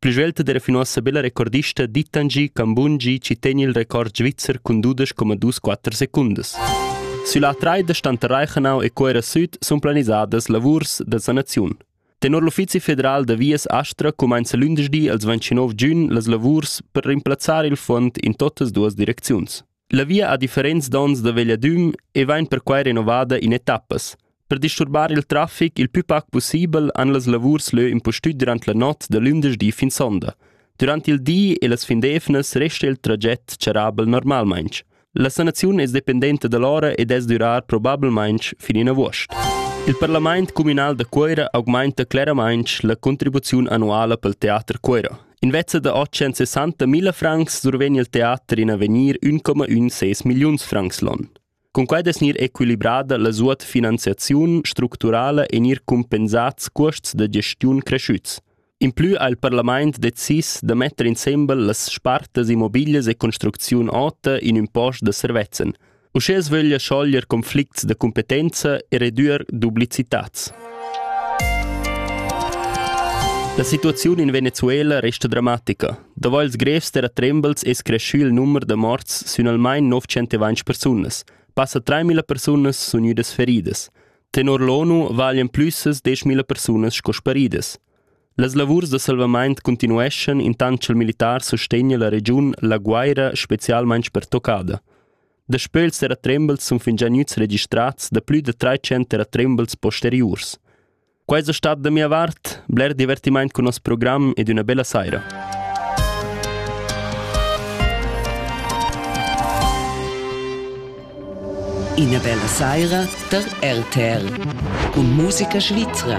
Plü svelta d'eira fin uossa be la recordista Ditangi Kambunji chi tegn il record svizzer cun dudesch comma dus quatter secundas. Sülla traida stanta Reichenau e Cuera Süd sun planisadas lavurs da sanaziun. Tenor l'Uffizi federal da vias Astra cumainza lündeschdi als 29 giun las lavurs per rimplazzar il fond in totas duas direcziuns. La via ha differents donns da vegliadüm e vain perquai renovada in etappas. Per disturbar il traffic il plü pac pussibel han las lavurs lö impustüt durant la not da lündeschdi fin sonda. Durant il di e las fin d'eivnas resta il traget charrabel normalmaing. La sanaziun es dependenta da l'ora e dess durar probablmaing fin in avuost. Il parlament cumünal da Cuoira augmainta cleramaing la contribuziun annuala pel teater Cuoira. Invece da 860.000 francs survegn il teater in avegnir 1,16 milliuns francs l'on. Cun quai es gnir equilibrada la suot finanziaziun structurala e gnir cumpensats cuosts da gestiun cresciuts. In plü ha il parlament decis da metter insembel las spartas immobiglias e construcziun ota in ün post da servezzan, Uschè sveglia schoglier conflicts da cumpetenza e redüer duplicitats. La situaziun in Venezuela resta dramatica. Daval ils grevs terra trembles es creschü il numer da morts sün almain 920 persunas. Passa 3.000 persunas sun gnüdas feridas. Tenor l'ONU valian plüs 10.000 persunas sco sparidas. Las lavurs da salvamaint cuntinueschan intant cha'l militar sustegna la regiun la Guaira specialmaing pertoccada. Daspö ils terratrembels sun fingià gnüts registrats da plü da trais terratrembels posteriurs. Quai es stat da mia vart bler divertimaint cun nos program ed üna bella saira. Ina bella saira da RTL cun musica svizra.